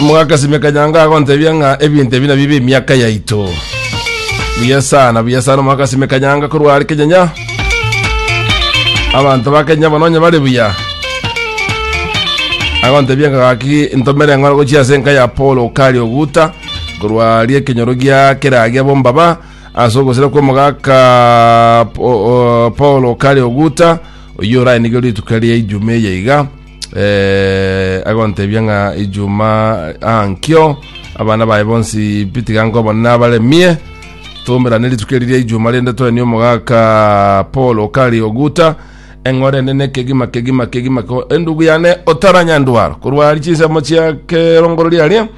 omogaka sime kanyanga agontebia ng'a ebinto ebi nabio b'emiaka yaito buya sana buya sana omogaka sime kanyanga korwa are kenyanya abanto ba kenya banonya bare buya agontebia ng'a gaki ntomere eng'ora gochia ase enka ya paul okari oguta korwa rie ekenyoro gia keragia bombaba ase ogosira kw'omogaka Po- o- paul okari oguta Oyio orae nigo rituko ria ijuma eye iga eh, agontebia ng'a ijuma ah, nkio abana baye bonsi pi tiga nkobona nabaremie tomerane rituko eri ria ijuma rende toenie omogaka paul okari oguta eng'ore nene kegima kegima kegima ko endugu yane otaranyandwaro korwa ari chinsemo chia kerongoro riaria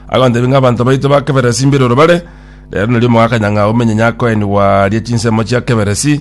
agontebia ng'a abanto baito ba keberesi mbiroro bare rero nari omogaka nyang'a omenye nyakoenigwa ria chinsemo chia keberesi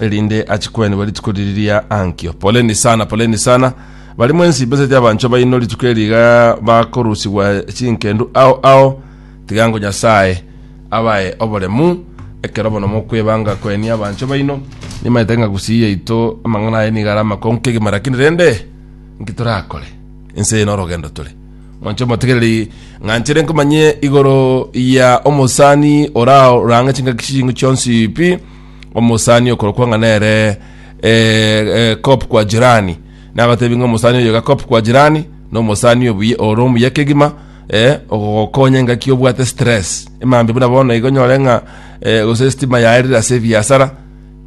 erinde achi kwenigwa rituko riri ria ankio poleni sana poleni sana bari mwensi beseti abancho baino rituko eriga bakorusigwa chinkendu ao ao tigango nyasaye abae oboremu ekero bono mokwebanga kweni abancho baino nimaete ng'a gusii yaito amang'ana aye nigara amakong'u kegima lakini rende nkitorakore ense eno orogendo tore mwanche motegereri ng'anchere nkomanye igoro ya omosani orao range chingaki ching'u chionsi pi omosani okorokwa ng'a nere eh, eh, kop kwa jirani nagatebi ng'a omosani oyo iga kop kwa jirani na omosani obuya oro omuya kegima eh, ogogokonya engaki obwate stress emambe buna bono igo nyore ng'a eh, gose estima yaerire ase ebiasara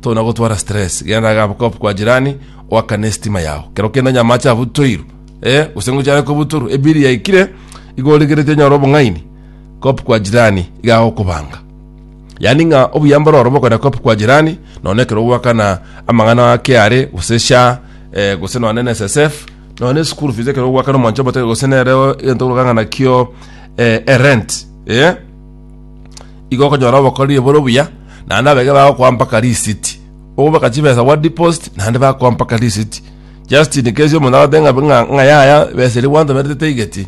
tona gotwara stress genda gabo kop kwa jirani oakane estima yao kero kende onye amache abutoiru eh, gose ngochare kobuturu ebiri yaikire igo origereti onyore obong'aini kop kwa jirani iga agokobanga Yaani ng'a obuya mbororo bokogenda kwa kwa jirani, nonya ekero ogwakana amang'ana a KRA, gose SHA, eh, gose nonya na NSSF, nonya na school fees ekero ogwakana omwancho omoteke gose nere o- egento ogokana ng'a nakio eh, erent, eh? igo okonyora obokoriri bore obuya naende abege bagokoa mpaka risiti obeka chibesa gwa deposit naende bakoa mpaka risiti just in case omonto agote ng'a ng'a ng'a yaya ebesa eria gwantomerete taigeti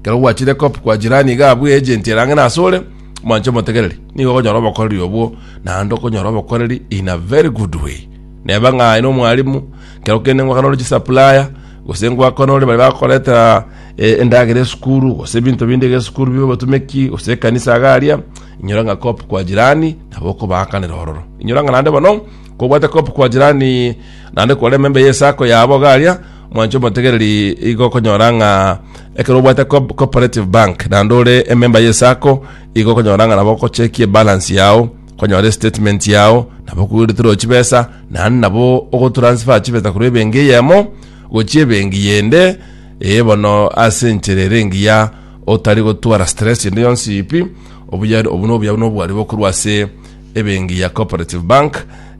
Ekero gwachire kop kwa jirani iga abwe agent erang'ene asore, mwanche omotegereri, nigo okonyora obokoreri obwo, naende okonyora obokoreri in a very good way. Neba ng'a aye nomwalimu, kero kende ngwakana ore chisupplier, gose ngwakana ore bari bakoretera eh, endagera esukuru, gose ebinto binde iga esukuru bibe obotumeki, gose ekanisa iga aria, inyora ng'a kop kwa jirani nabo okobaakanera ororo. Inyora ng'a naende bono, kobwate kop kwa jirani naende kore emembe y'esako yabo iga aria, Mwanche omotegereri igo okonyora ng'a ekero obwate co- cooperative bank naende ore ememba y'esako igo okonyora ng'a nabo ogochekia ebalance yao konyora estatement yao nabo okogwereterwa chibesa naende nabo ogotransfer chibesa korwa ebenki eyemo gochia ebenki yende eye bono ase enchera ere engiya otari gotwara stress ende yonsi pi obuya obwo nobuyao nobwari bokorwa ase Ebenki ya Cooperative Bank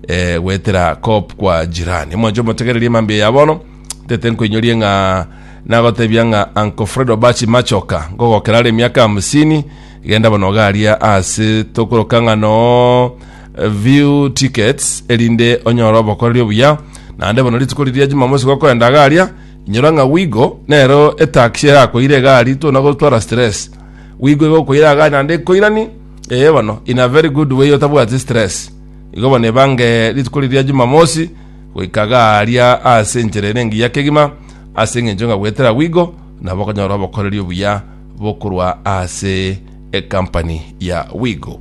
eh, gwetera Coop kwa jirani. Mwancho motegererie mambia ya bono. Tete nkoinyorie ng'a nagotebia ng'a Uncle Fred Obachi Machoka ngogokera are emiaka hamsini genda bono garia ase tokoroka ng'a no eh, view tickets erinde onyore obokoreri obuya naende bono rituko riria Jumamosi gokoenda garia inyora ng'a wigo nero etaxi erakoire egari tona gotwara stress wigo igokoira agari naende ekoirani Ee bono, in a very good way otabwati stress. Igo bono ebange rituko riria Jumamosi goika iga aaria ase enchera ere engiya kegima, ase engencho ng'a goetera agwo igo nabo okonyora obokoreri obuya bokorwa ase ecompany ya Wigo.